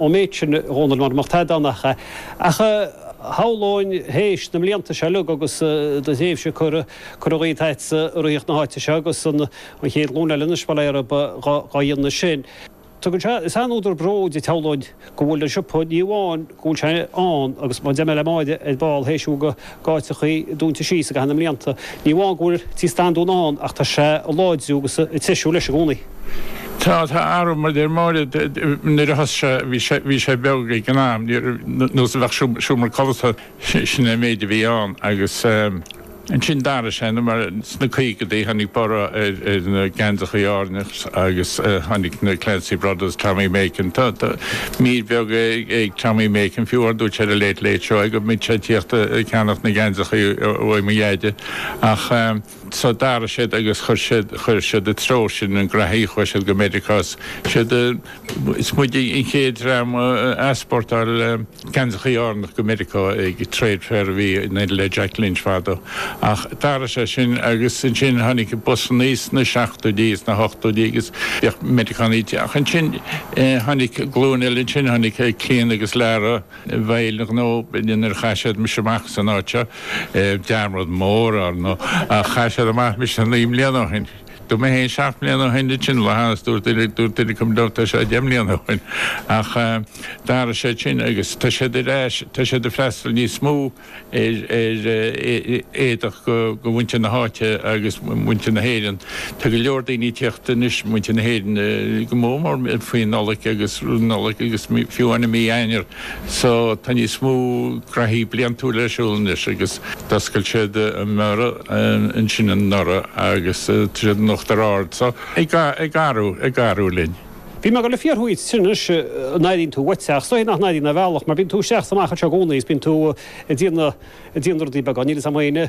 an méid sin a Dhónaill mar nach taghdáin ach é. Ach shamhlóinn théis na mblianta seo uilig agus do thréimhse curtha dhíot agatsa ag ritheacht na háite seo agus an chéad ghlúin eile anois, bail orthu dhá dhéanamh sin. Tugann sé, is an-údar bróid é shamhlóinn go bhfuil an siopa ní amháin go bhfuil sé ann agus mar a deir mé le Máire ar ball théis a bhfuil go d'áiteachaí dúnta síos i gcaitheamh na mblianta. Ní amháin go bhfuil Tigh Standúin ann ach tá sé ag láidriú agus ag treisiú leis i gcónaí. Tá athrú mar a deir Máire nuair a thosaigh sé bhí sé bhí sé beag ag an am ní raibh nós a bheadh seomra codlata sin an méid a bhí ann agus ansin d'athraigh sé nó mar Sna caogaidí, tháinig borradh ar na geansachaí Árannacha agus tháinig na Clancy Brothers, Tommy Makem. Tá mír bheag ag Tommy Makem, fiú, ar dhúirt sé ar an Late Late Show é go mbíodh sé ag tíocht ag ceannacht na geansachaí uaidh mo dheaide. Ach so d'athraigh siad agus chuir siad, chuir siad i dtreo sin an graithí, chuaigh siad go Meiriceá, is muid an chéad dream a easpórtáil. Geansachaí Árannacha go Meiriceá ag trade fair a bhí le Jack Lynch fadó, ach d'athraigh sé sin agus ansin tháinig busannaí sna seachtóidí is na hochtóidí agus bhíodh Meiriceánaigh ag, ach ansin tháinig glúin eile ansin, tháinig Clíona agus Laragh, bhuel ar ndóigh nuair a chaith siad mise amach as an áit seo, dearmad mór, ár ndóigh, ach chaith siad amach mise naoi mbliana ó shin. Dúirt mé féin seacht mbliana ó shin de sin lathas, dúirt duine, dúirt duine comh domh tá sé deich mbliana ó shin, ach d'athraigh siad sin agus tá siad ar ais, tá siad ag freastal níos mó ar ar éadach go go mhuintir na háite agus muintir na hÉireann. Tá go leor daoine ag tíocht anois, muintir na hÉireann go mór mór faoin Nollaig agus Nollaig agus fiú amháin i mí Eanáir, So, tá níos mó graithí bliantúil ar siúl anois agus d'oscail siad anuraidh ansin anuraidh agus tá siad in Uachtar Ard. So, ag athrú, ag athrú linn. Bhí mé ag dul le fiafraí dhíot sin anois, an airíonn tú uait é ach is dóiche nach n-airíonn ar bhealach mar bíonn tú isteach is amach anseo i gcónaí is bíonn tú ag déanamh, ag déanamh rudaí beaga, níl fhios a'm fhéin eh.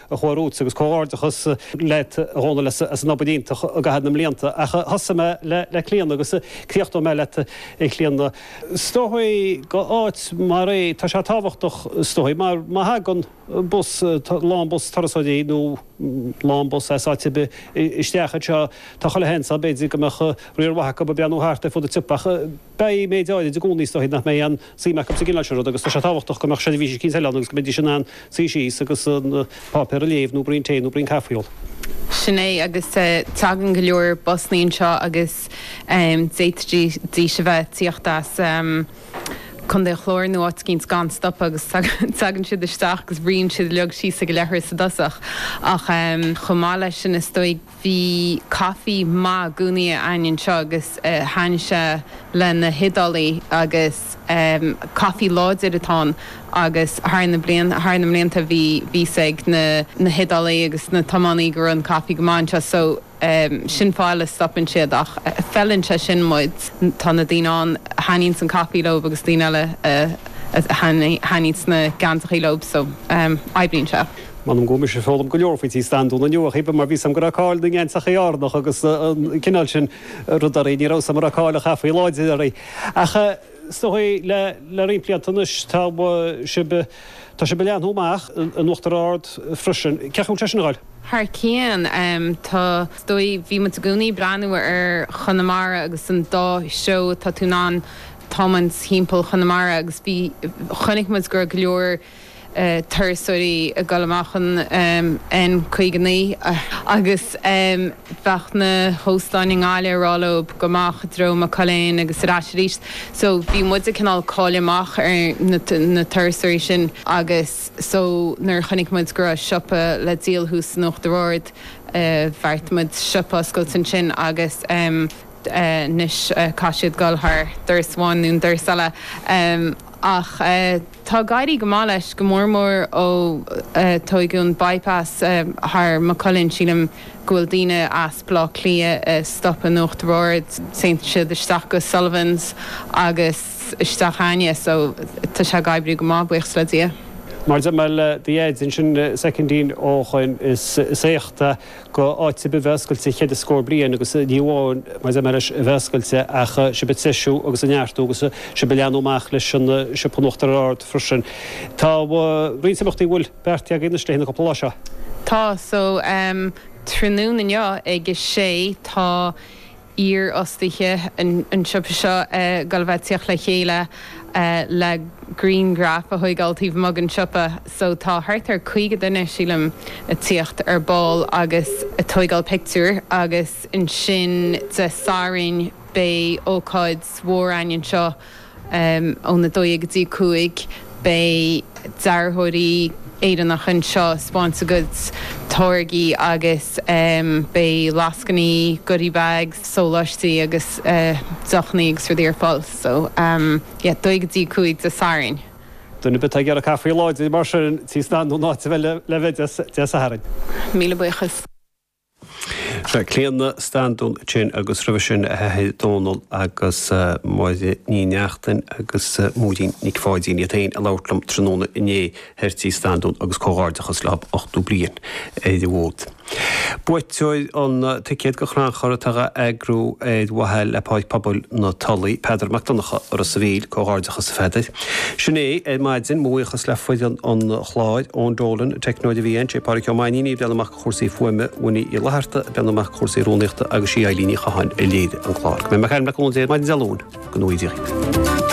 amhras agus comhghairdeachas leat a Dhónaill as an obair iontach i gcaitheamh na mblianta ach thosaigh mé le Clíona agus críochnóidh mé leat a Chlíona. Is dóichí go áit mar é, tá sé tábhachtach is dóichí mar má thagann bus, lán bus turasóirí nó lán bus as áit ar bith isteach anseo tá chuile sheans ann b'fhéidir go mbeadh riar mhaith acu ag breathnú thart ar fud an tsiopa ach, Beidh méid áirid i gcónaí is dóigh nach mbeidh aon suim acu sa gcineál seo ruda agus tá sé tábhachtach go mbeadh seirbhís eicínt eile ann agus go mbeidís in ann suí síos agus an páipéar a léamh nó braon tae nó braon caife a ól. Sin é agus tagann go leor busannaí anseo agus d'fhéadfaidís a bheith ag tíocht as Contae an Chláir nó áit eicínt gan stopadh agus tagann siad isteach agus ritheann siad uilig síos ag an leithreas i dtosach ach chomh maith leis sin is dóigh Bhí caife maith i gcónaí a'inn anseo agus thaitin sé le na hIodálaigh agus caife láidir atá ann agus thar na blianta thar na mblianta bhí bhí 's ag na na hIodálaigh agus na tiománaithe go raibh an caife go maith anseo so sin fáth le stopann siad ach feileann sé sin muid tá na daoine ann a thaitníonns an caife leob agus daoine eile a thaitníonns na geansachaí leob so oibríonn sé. M'anam go bhfuil mise ag foghlaim go leor faoi Tí Standún inniu, a Chaoimhe, mar bhí 's agam go raibh cáil na ngeansachaí Árannach agus an cineál sin ruda oraibh. Ní raibh 's agam go raibh cáil an chaife láidir oraibh. Ach is dóigh le roinnt blianta anois tá sibh, tá sibh ag leathnú amach in Uachtar Ard freisin. Cén chaoi a bhfuil sé sin ag dul? Thar cionn. Tá, is dóigh, bhí muid i gcónaí ag breathnú ar Chonamara agus an dá threo atá tú in ann tiomáint thimpeall Chonamara agus bhí, chonaic muid go raibh go leor, turasóirí ag dul amach an N59 agus bheadh na hóstáin i nGaillimh ag rá leob gabh amach i dtreo Maigh Cuilinn agus ar ais arís so bhí muid ag cineál cailleadh amach ar na turasóirí sin agus so nuair a chonaic muid go raibh siopa le díol thuas in Uachtar Ard bheartaigh muid siopa a oscailt ansin agus anois caithfidh siad dul thar doras amháin nó an doras eile. ach tá ag éirí go maith leis, go mór mór ó tóigeadh an By-pass thar Maigh Cuilinn. Sílim go bhfuil daoine as Baile Átha Cliath ag stopadh in Uachtar Ard, téann siad isteach go Sullivans agus isteach a'inne, so tá sé ag oibriú go maith, buíochas le Dia. Mar a dúirt mé le do dheaid ansin, soicindín ó shoin is éacht é. do áit ar bith a bheith oscailte cheithre scór bliain agus ní amháin mar a dúirt mé leis a bheith oscailte ach sibh ag treisiú agus ag neartú agus sibh ag leathnú amach leis an siopa in Uachtar Ard freisin. Tá roinnt imeachtaí an bhfuil beartaithe agaibh anois le haghaidh na cúpla lá seo. Tá, so, tráthnóna inniu ag a sé tá. iarfhostaithe an tsiopa seo ag dul a bheith ag tíocht le chéile le grianghraif a thóigeáil taobh amuigh den siopa so tá thart ar 50 duine, sílim, ag tíocht ar ball agus ag tóigeáil pictiúr agus ansin Dé Sathairn beidh ócáid mhór a'inn anseo. Óna dó dhéag go dtí cúig, beidh dearthóirí Éireannacha anseo ag spáint a gcuid táirgí agus beidh lascainí, goodie bags, sóláistí agus deochannaí agus rudaí ar fáil. So yeah, dó dhéag go dtí cúig Dé Sathairn. Duine ar bith atá ag iarraidh caife láidir mar sin, Tí Standún an áit a bheith le bheith, Dé Sathairn. Míle buíochas. Sea, Clíodhna Standún ansin agus roimhe sin a hathair Dónall agus Máire Ní Neachtain agus Móirín Nic Pháidín iad féin ag labhairt liom tráthnóna inné thoir tigh Standún agus comhghairdeachas leo ochtó bliain ar an bhfód. Buaiteoir an ticéad do chrannchur atá á eagrú ar mhaithe le Páirc Pobail na Tulaí, Peadar Mac Donncha ó Ros a' Mhíl, comhghairdeachas a Pheadair. Sin é ar maidin, mo bhuíochas le foireann an chláir, Eoin Dolan an teicneoir a bhí ann, Sé Pádraic Ó Mainín, a bhí ag breathnú amach. chúrsaí fuaime Winnie Uí Fhlaithearta, ag breathnú amach do chúrsaí rúnaíochta agus sí Eileen Ní Chatháin a léirigh an clár. Go mbeidh muid ag caint le cúnamh Dé maidin Dé Luain. Go ngnóthaí Dia dhaoibh.